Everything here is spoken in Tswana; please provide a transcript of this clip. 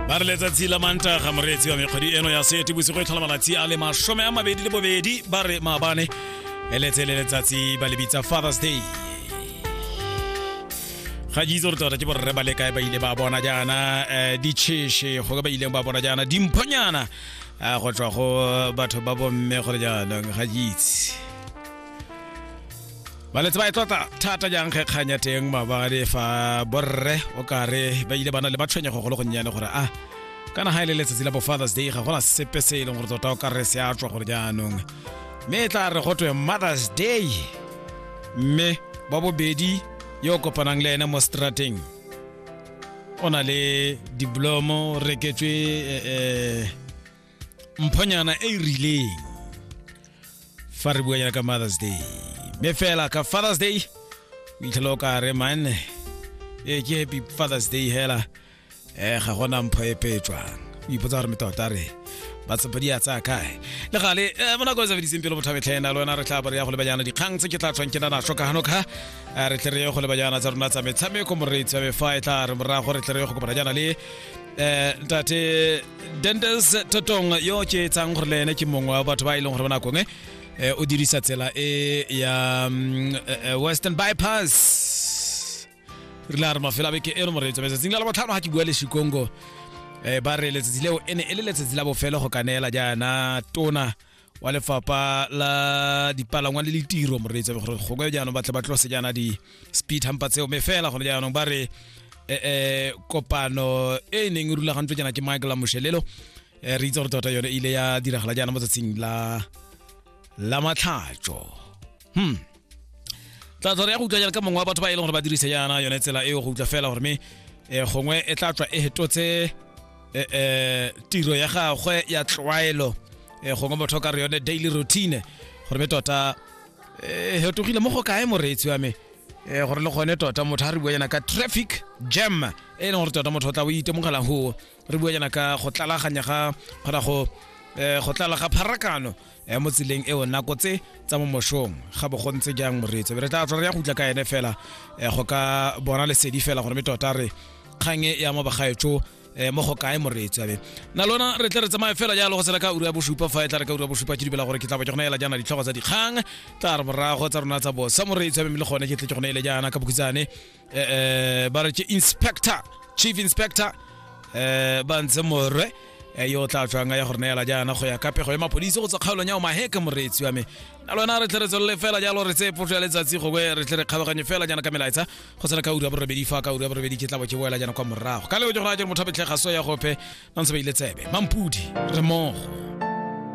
ba re letsatsi la mantaga moreetsi wa mekgwedi eno ya sete bosigo e tlhola malatsi a le masome a mabedi le bobedi ba re maabane eletse le letsatsi ba lebitsa fathers day ga ke itse gore tota ke borre ba le kae ba ile ba bona jaana um ditšheshe go ka ba ileng ba bona jaana dimphonyana um go tswa go batho ba bomme gore jaanong ga ke itse baletse ba e tlotla thata jang ge kgang ya teng mabale fa borre o kare ba ile bana le matshwenyego go le gonnyane gore a kana ga e le letsatsi la bo fathers day ga gona sepe se e leng gore tota o kare se a tswa gore jaanong mme e tla re go twe mothers day mme wa bobedi yo o kopanang le ene mo strateng o na le diblomo reketswe eh, eh, mphonyana e e rileng fa re buanyana ka mothers day mme fela ka fathers day o itlhela o ka re man e ke happy fathers day hela um ga gona mpho e petswang o ipotsa gore metota re batsepa di a tsaya kae le gale um mo nako e sebediseng pele bothabetlhena le wena re tla bo re ya go lebajana dikgang tse ke tla tswang ke na naso ka gano ka Eh, re tle re ye go lebajana tsa rona tsa metshameko moreitsi ya mefa e tla re morago re tle re ye go kopana jana le um ntate dendes totong yo o tšeetsang gore le ene ke mongwe wa batho ba e leng gore ba nakong e eh, o dirisa tsela e ya mm, eh, eh, western bypass re la re mafelo a beke e re moreetso metsatsing la labotlhano ga ke bua le shikongo eh, ba re letsatsi leo e ne e le letsatsi la bofelo go ka neela jaana tona wa lefapha la dipalangwa le litiro moreetsa gore gongwe jaanong batle ba tlose jaana di-speed hampa tseo me fela gone jaanong ba re eh, eh, kopano e e neng e rulagantswe jaana ke michael a moshelelo eh, re itse gore tota yone e ile ya diragala jaana mo tsatsing la la matlhatso hmm tla tswa re ya go utlwa jalo ka mongwe wa batho ba e leng gore ba dirise yana yone tsela eo go utlwa fela gore me um gongwe e tla tswa e hetotse um tiro ya gagwe ya tlwaelo um gongwe motho o ka re yone daily routine gore me tota um hetogile mo go kae moreetsi wa me um gore le gone tota motho a re bua yana ka traffic jam e leng gore tota motho o tla o itemogelang go re bua jana ka go tlalaganya ga kgona go um go tlala ga pharakano um mo tseleng eo nako tse tsa mo moshong ga bo go ntse jang moreetso be re tla tswa re ya go utla ka ene fela um go ka bona lesedi fela gore me tota re kgang e ya mo bagaetso um mo go kae moreetso abe na lona re tle re tsamaye fela jalo go sena ka uru ya bosupa fa e tla re ka uru ya bosupa ke dibela gore ke tla ba ke gona ela jaana ditlhogo tsa dikgang tla re morago tsa rona tsa bosa moreetso abe mme le gone ke tle ke gone ele jaana ka bokhitsane eh, eh, ba re ke inspector chief inspector eh, ba ntse morwe eh, yo o tla fanga ya go re neela jaana go ya ka pego ya mapodisi go tswa kgaolong ya omaheke moreetsi wa me na lona re tle re tswelele fela jalo re tseye potso ya letsatsi gongwe re tle re kgabaganye fela jaana ka melaetsa go tsena ka uri ya borobedi fa ka uri ya borobedi ke tla bo ke boela jaana kwa morago ka leo ke gona ke re motho a betlhega so ya gope ba ntse ba ile tsebe mampudi re mogo